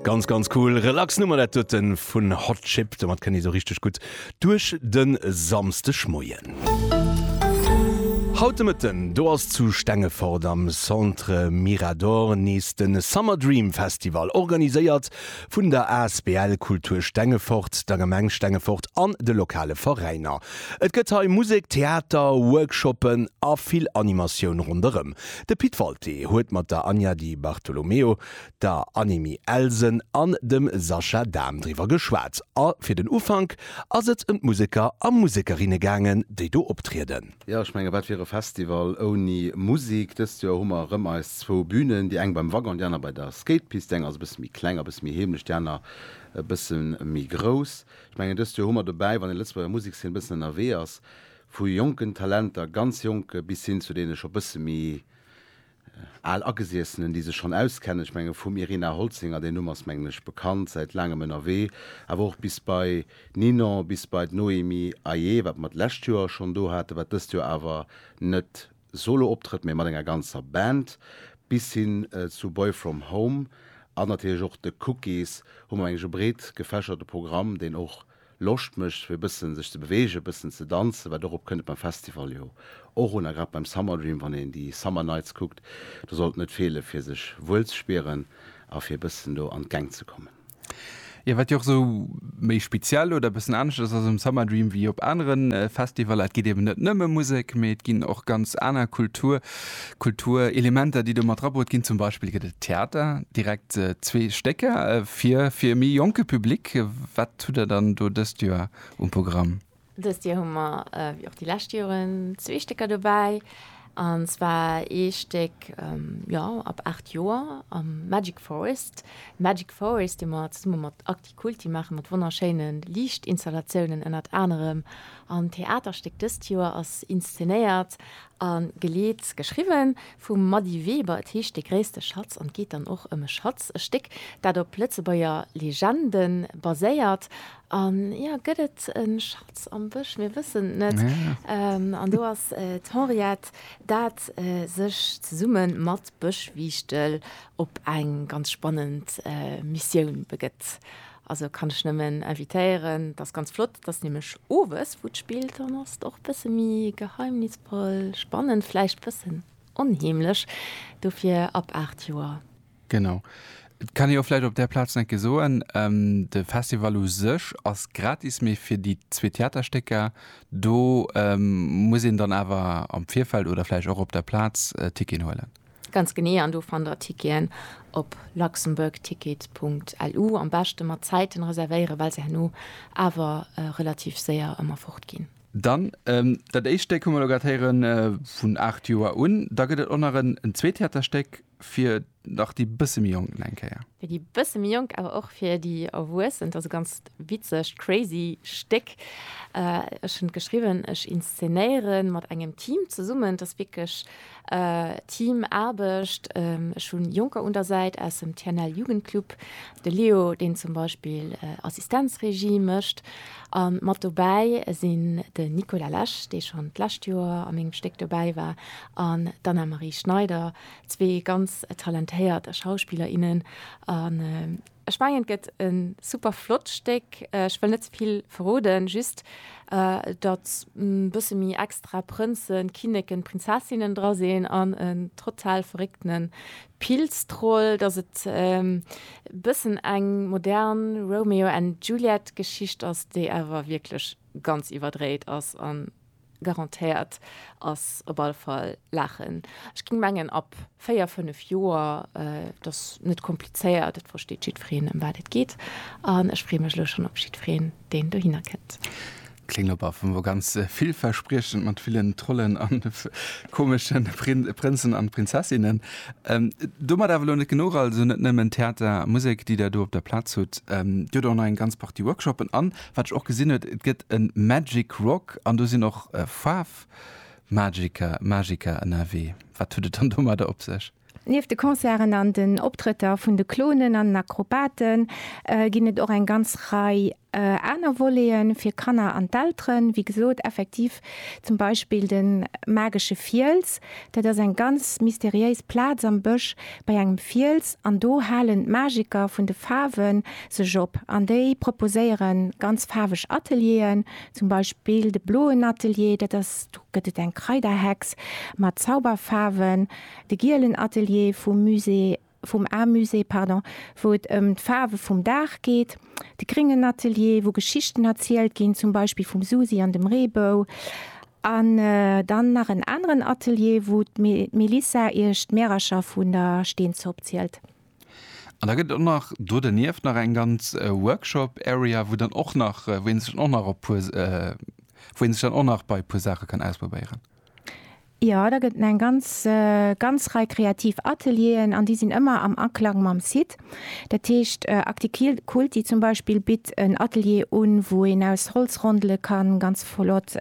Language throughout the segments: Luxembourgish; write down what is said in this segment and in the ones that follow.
Ganz ganz cool relax Nummer dat huet en vun Hot Chip, domat kënnt ee sou richteg gutt duerch de Samsdeg Moien. Haut de Mëtten do ass zu Stengefort am Centre Mirador nees de Summer Dream Festival, organiséiert vun der asbl Kultur Stengefort, der Gemeng Stengefort an de lokale Veräiner. Et gëtt hei Musek, Theater, Workshoppen a vill Animatioun ronderëm De Pit Walté huet mat der Anja Di Bartolomeo, der Annemie Elsen an dem Sascha Dahm driwwer geschwat a fir den Ufank ass et ëm d'Museker a Musekerinne gaangen, déi do optrieden. Jo, ech menge wat wier e Festival ouni Musek? Dëst Joer hu mer erëm eis zwou Bünen, déi eng beim Wagon, déi aner bei der Skatepist. Déi eng ass e bësse méi kleng, e bësse méi heemlech, déi aner e bësse méi grouss. Ech mengen dëst Joer hu mer dobäi, wann ee Lëtzebuerger Musekszeen e bëssen ënnerwee ass, Vu jonken Talenter, ganz jonke, bis hin zu deene scho bësse méi al Agesiessenen, déi sech schonn auskennen. Ech menge vum Irina Holzinger, deen Numm ass, mengen ech, bekannt, säit laangem ënnerwee, awer och bis bei Ninon, bis bei d'Noémie Ayer, wat mer d'lescht Joer schonn do haten, wat dëst Joer awer net Solo-Optrëtt, mee mat enger ganzer Band, bis hin zu Boy From Home an natierlech och de Cookies, hu mer mengen ech e breet gefächerte Programm, deen och Loscht mécht fir e bësse sech ze beweegen, e bëssen ze danzen, wat dorop kënnt et beim Festival jo och un, a grad beim Summer Dream, wann een déi Summer Nights kuckt, do sollt net feele fir sech wuel ze spieren a fir e bëssen do an d'Gäng ze kommen. Jo, wat jo och esou méi speziell oder e bëssen anescht ass, ass um Summer Dream wéi op anere Festivaller, et geet eben net nëmme Musek, mee et ginn och ganz aner Kultur, Kulturelementer, déi do mat drabrut ginn. Zum Beispill gëtt et Theater, direkt zwee Stécker fir e méi jonke Public. Wat hutt Der dann do dëst Joer um Programm? Dëst Joer hu mer, wéi och déi lescht Joren, zwee Stécker dobäi. An zwar ee Stéck, jo, ab 8 Joer, am Magic Forest. Magic Forest, dee mer zesumme mat Actikulti maachen, mat wonnerschéine Liichtinstallatiounen ënnert anerem. An d'Theaterstéck dëst Joer ass inszenéiert a geleet, geschriwwen, vum Mady Weber. Et heescht De gréisste Schatz an et geet dann och ëm e Schatz, e Stéck, dat op Lëtzebuerger Legende baséiert. An ja, gëtt et e Schatz am Bësch? Mir wëssen et net. An do ass d'Henriette, dat sech zesumme mat Bëschwiichtel op eng ganz spannend Missioun begëtt. Also kann ech nëmmen invitéieren, dat ass ganz flott, dat ass nämlech owes, wou d'Spill dann ass. Och e bësse méi geheimnisvoll, spannend, vläicht e bëssen onheemlech, dofir ab 8 Joer. Genau. Et kann ee jo vläicht op där Plaz nach eng Kéier soen, de Festival u sech ass gratis, mee fir déi zwee Theaterstécker, do muss een dann awer am Virfeld oder vläicht och op der Plaz Ticketen huelen. Ganz genee, an do fannt der Ticketen op luxembourgtickets.lu. Am beschte mat Zäiten reservéieren, well se herno awer relativ séier ëmmer fort ginn. Dann dat éischt Stéck hu mer elo grad héieren, vun 8 Joer un. Da gëtt et och nach en zweet Theaterstéck. fir nach déi bësse méi Jonken eng Kéier. Fir déi bësse méi Jonk, awer och fir déi Erwuessen. Et ass e ganz witzegt, crazy Stéck. Ech hunn et geschriwwen, ech inszenéiere mat engem Team zesummen. Et ass wierklech Teamaarbecht. Ech hu Jonker un der Säit aus dem TNL Jugendclub, de Leo, deen zum Beispill Assistenzregie mécht. A mat dobäi sinn den Nicolas Lesch, dee schonn d'lescht Joer a mengem Stéck dobäi war, an d'Anna-Marie Schneider, zwee ganz talentéiert Schauspiller, innen an ech mengen et gëtt e super flott Stéck. Ech wëll net ze vill verroden, just datt e bësse méi extra Prënzen, Kinneken, Prinzessinnen dra sinn an en total verréckte Pilztroll, datt et e bëssen eng modern Romeo and Juliet Geschicht ass, déi awer wierklech ganz iwwerdréit ass an Garantéiert ass op alle Fall Laachen. Ech ging mengen ab 4, 5 Joer. Et ass net komplizéiert, et versteet jiddwereen ëm wat et geet an ech freeë mech elo schonn op jiddwereen deen dohinner kënnt. Kléngt op alle Fall ganz villverspriechend mat villen Trollen an komesche Prënzen an Prinzessinnen. Domat awer elo net genuch, also net nëmmen Theater a Musek déi der do op der Plaz hutt, Dir hutt och nach eng ganz Partie Workshoppen an Wat ech och gesinn huet, et gëtt e Magic Rock an do sinn och Faarf Magiker, Magiker ënnerwee. Wat huet et dann domadder op sech? Nieft de Concerten an den Optrëtter vun de Clownen an den Akrobaten ginn et och eng ganz Rei aner Volete fir Kanner an d'Elteren. Wéi gesot, effektiv zum Beispill de magesche Fiels. Dat ass eng ganz mysteriéis Plaz am Bësch bei engem Fiels an do halen d'Magiker vun de Faarwen sech op an déi proposéiere ganz faarweg Atelieren, zum Beispill de bloen Atelier, dat ass, do gëtt et eng Kraiderhex mat Zauberfaarwen, de gielen Atelier vum Musée, vum Amusée, pardon, wou et ëm d'Faarwe vum Dag geet, de gréngen Atelier, wou Geschichten erzielt ginn, zum Beispill vum Susi an dem Reebou, an dann nach en aneren Atelier, wou d'Melissa iech d'Märercher vun der Steenzopp zielt. An da gëtt et och nach do dernieft nach eng ganz Workshop Area, wou dann och nach, wou een sech dann och nach op puer, wou een sech dann och nach bei e puer Saache kann ausprobéieren. Jo, da gëtt en eng ganz, ganz Rei kreativ Atelieren an déi sinn ëmmer am Aklang mam Site. Dat heescht Acticulti zum Beispill bitt en Atelier un, wou een aus Holzrondele kann ganz flott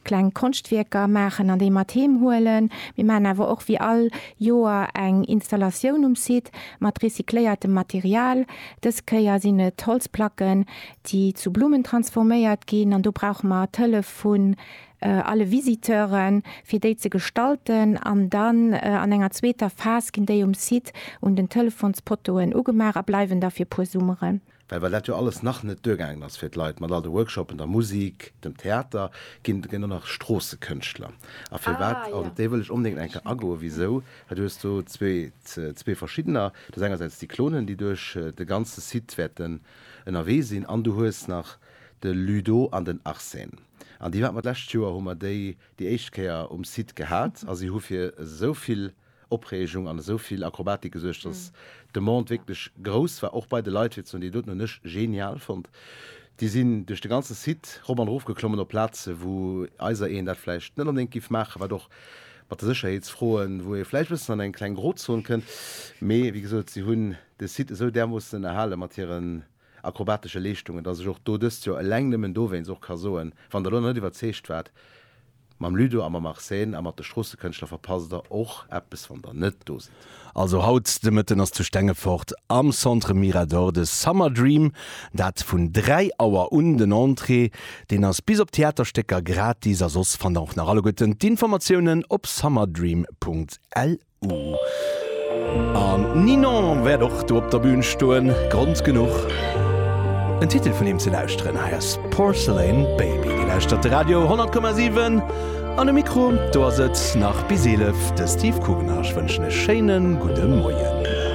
kleng Konschtwierker maachen an déi mat heem huelen. Mir maachen awer och wéi all Joer eng Installatioun um Site mat recycléiertem Material. Dës Kéier sinn et Holzplacken, déi zu Blummen transforméiert ginn an do brauche mer d'Hëllef vun alle Visiteuren, fir déi ze gestalten an dann an enger zweeter Phas ginn déi um Site un den Telefonspoteauen ugemaach a bleiwen da fir puer Summeren. Well well dat jo alles nach net duergaangen ass fir d'Leit, mat all de Workshopen, der Musik, dem Theater, ginn et elo nach Stroossekënschtler. A firwat, an op déi wëll ech onbedéngt eng Kéier agoen, wisou? Well du hues do zwee verschiddener. Du hues engersäits déi Clonen, déi duerch de ganze Site wäerten ënnerwee sinn, an du hues nach de Ludo an den Arsène. An déi haten mer d'lescht Joer, hu mer déi déi éischt Kéier um Site gehat, a si hu fir esou vill. Opreegung an esou vill Akrobatik gesuergt, dass d'Demande wierklech grouss war, och bei de Leit. Fir ze soen, déi doten hunn ech genial fonnt. Déi sinn duerch de ganze Site rop an erof geklommen op Plaze wou eiser een dat vläicht net onbedéngt géif maachen, wat och mat de Sécherheetsfroen, wou ee vläicht e bëssen an eng kleng Grozon kënnt. Mee wéi gesot, si hunn de Site esou därmoossen ënnerhale mat hiren akrobatesche Leeschtungen, dass ech och do dëst Joer eleng nëmmen dowéinst och ka soen, wann Der elo nach net iwwerzeegt waart, Mam Ludo a mam Arsène a mat de Stroossëkënschtler verpasst Der och eppes, wann Der net do sidd. Also haut de Mëtten ass zu Stengefort am Centre Mirador de Summer Dream, dat vun 3 Auer un. Den Entrée, deen ass bis op d'Theaterstécker gratis a soss fannt Der och nach alleguerten d'Informatiounen op summerdream.lu. An Ninon wäert och do op der Bün stoen, Grond genuch en Titel vun him ze lauschteren. Hei ass Porcelain Baby. Dir lauschtert de Radio 10,7 an um Mikro do ass et nach bis 11 de Steve Kugener. Ech wënschen e schéine gudde Moien.